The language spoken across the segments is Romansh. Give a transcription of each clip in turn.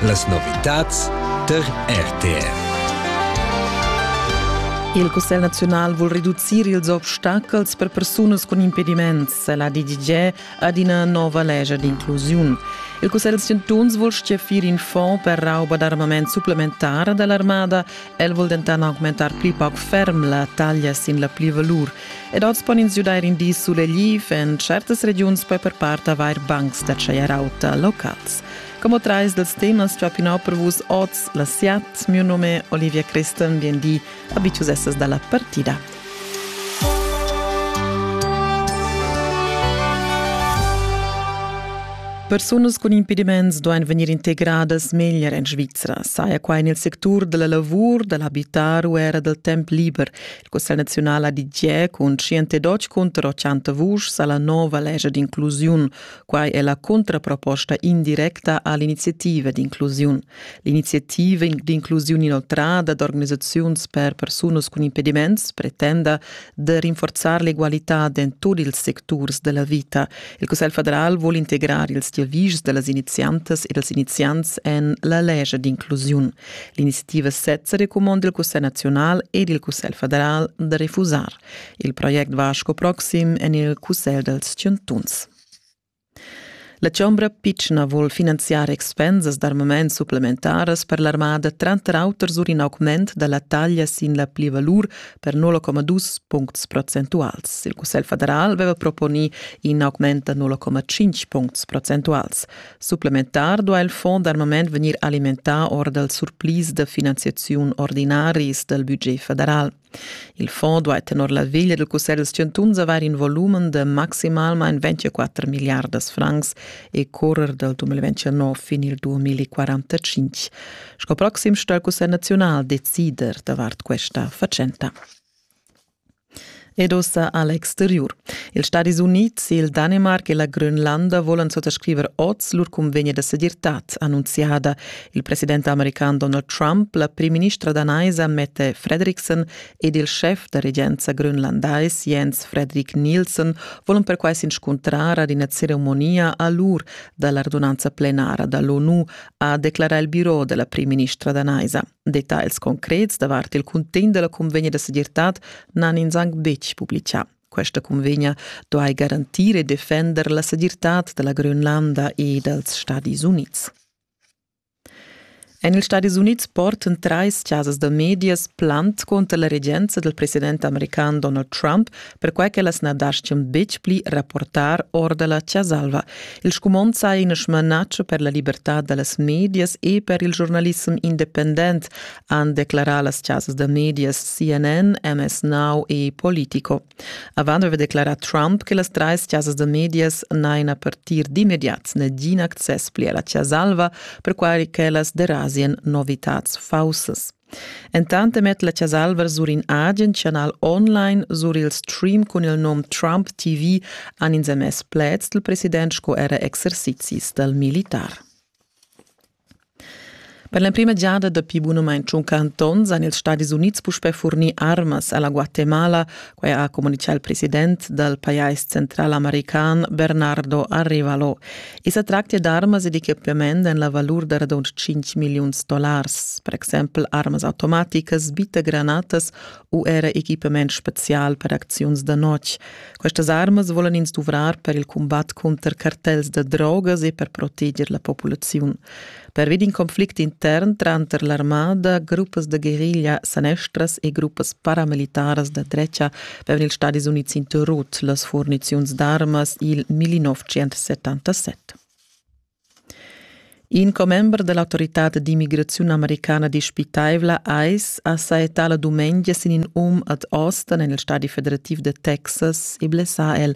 Las novitads tar RTR. Il Cussegl naziunal vul reducir ils obstacels per persunas cun impediments. La DGG ad ina nova lescha d'inclusiun. Il Cussegl chantuns vul stgaffir in fond per rauba d'armament supplementar da l'armada. El vul dentant augmentar pli pauc ferm la taglia sin la plivalur. Ed oz pon ins giudair in di sulegliv. En certas regiuns puoi per part avair bancs da tschaier auta locals. Como trais dels temas tua pinò per vus oz la siat, mio nome Olivia Christen, bienvì a Biciusessas dalla partida. Persunas cun impediments duain vegnir integradas meglier en Svizra, saja quai nel sectur della lavur, dell'abitar u era del temp liber, Cussegl naziunala di tgè cun 112 contro 100 vuschs alla nova legge d'inclusiun. Quai è la contraproposta indirecta all'iniziativa d'inclusiun. L'iniziativa d'inclusiun inoltrada d'organisaziuns per persunas cun impediments pretenda de rinforzar l'egualità in tutti ils secturs della vita. Il Cussegl federal vuole integrare ils diavis dellas iniziantes e dels iniziants en la legge d'inclusiun. L'iniziativa sezza recumanda il Cussegl naziunal ed il Cussegl federal da refusar il project Vasco Proxim en il Cussegl dals chantuns. La Chombra pitschna vul finanziar expensas d'armament supplementaras per l'armada tranter auter sur in augment da la taglia sin la plivalur per 0,2 puncts procentuals. Il Cussegl federal aveva proponì in augment da 0,5 puncts procentuals. Supplementar duha il fond armament vegnir alimentà or dals surplis da finanziaziun ordinaris dal budget federal. Il fond duha tenor la veglia del Cussegl dels chantuns avair in volumen de maximalmain 24 miliardas francs e correr dal 2019 fin il 2045. Sco proxim sto il Cussegl nazional decider davart questa fatschenta. Ed ussa a l'exteriur. Ils Stadis Unids, il Danemarc e la Grönlanda volan suttascriver oz lur cunvegna da segirtad, annunziada. Il president american Donald Trump, la primministra danaisa Mette Fredriksen ed il schef da regenza grönlandais Jens Fredrik Nielsen volan perquai s'inscuntrar ad ina ceremonia a l'ur da l'ordonanza plenara da l'ONU, ha declarà il birò da la primministra danaisa. Detagls concrets davart il cuntegn della convegna da segirtad n'han ins anc betg publicà. Questa convegna duai garantir e defender la segirtad della Grönlanda e dals Stadis Unids. En ils Stadis Unids porten treis chasas da medias plant contra la regenza del president american Donald Trump perquai ch'ellas na daschian betg pli rapportar or da la Chasalva. Il scumond saja in smanatsch per la libertad da las medias e per il giornalissem independent, han declarà las chasas da medias CNN, MS Now e Politico. Avant aveva declarà Trump che las trais chasas da medias n'hajan a partir d'immediat nagin access pli a la Chasalva, perquai ch'ellas derasian novitads faussas. Entant emet la Chas'Alva sur in agen chanal online sur il stream cun il nom Trump TV han ins emess pleds dal president sco era exercizis dal militar. Per l'emprima giada dapi bunamain tschunca antons han ils Stadis Unids puspè furnì armas a la Guatemala Quai ha communitgà il president dal pajais central american Bernardo Arrivalo. I sa tractia d'armas ed equipament en la valur da radund 5 milliuns dollars, per exempel armas automaticas, bitagranatas u era equipament spezial per acziuns da notg. Questas armas volan ins duvrar per il cumbat cunter cartels da drogas e per proteger la populaziun. Pervi d'in conflict intern tranter l'armada, gruppas da guerriglia sanestras e gruppas paramilitaras da drecha vevan ils Stadis Unids interrut las furniziuns d'armas il 1977. In commember dell'autorità d'immigrazione americana dispitaivla ICE ha saettà la dumengia sin in um ad Austin, nel Stadi federativo de Texas, e blessà el.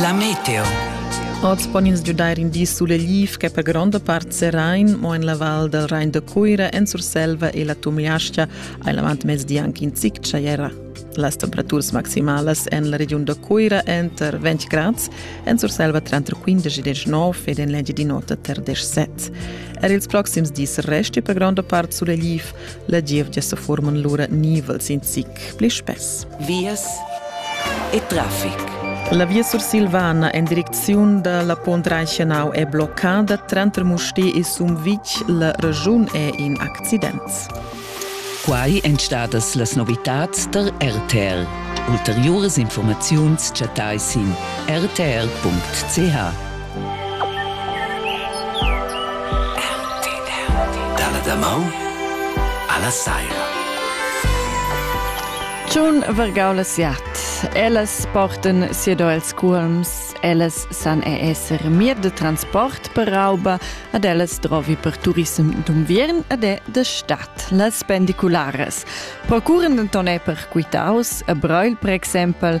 La meteo. Oz pon ins giudair in di sulegliv ch'è per gronda part serain, mo en la val dal Rain da Cuira, en Surselva e la Tumliascha hai l'avantmezdi anche in zic tschaiera. Las temperaturas maximalas en la regiun da Cuira enter 20 grads, en Surselva tranter 15 e 19 ed en l'Engiadin'Ota tar 17. Er ils proxims dis resti per gronda part sulegliv, La gievgia sa forman lura nivels in zic pli spess. Vias e traffic. La via sursilvana en direcziun da la Pont Reichenau è bloccada. Tranter Musté e Sumvitg la regiun è in accident. Quai èn stadas las novitads tar RTL. Ulteriuras informaziuns chattai sin rtl.ch. Dalla damaun alla saira. Tschun vargau la siat. Ellas porten siedo els cuolms, ellas san e esser mir de transport per rauba, ad ellas drovi per turism d'unviern ad è de stat, las pendiculares. Procuren denton è per quitaus, a Breil per exempel,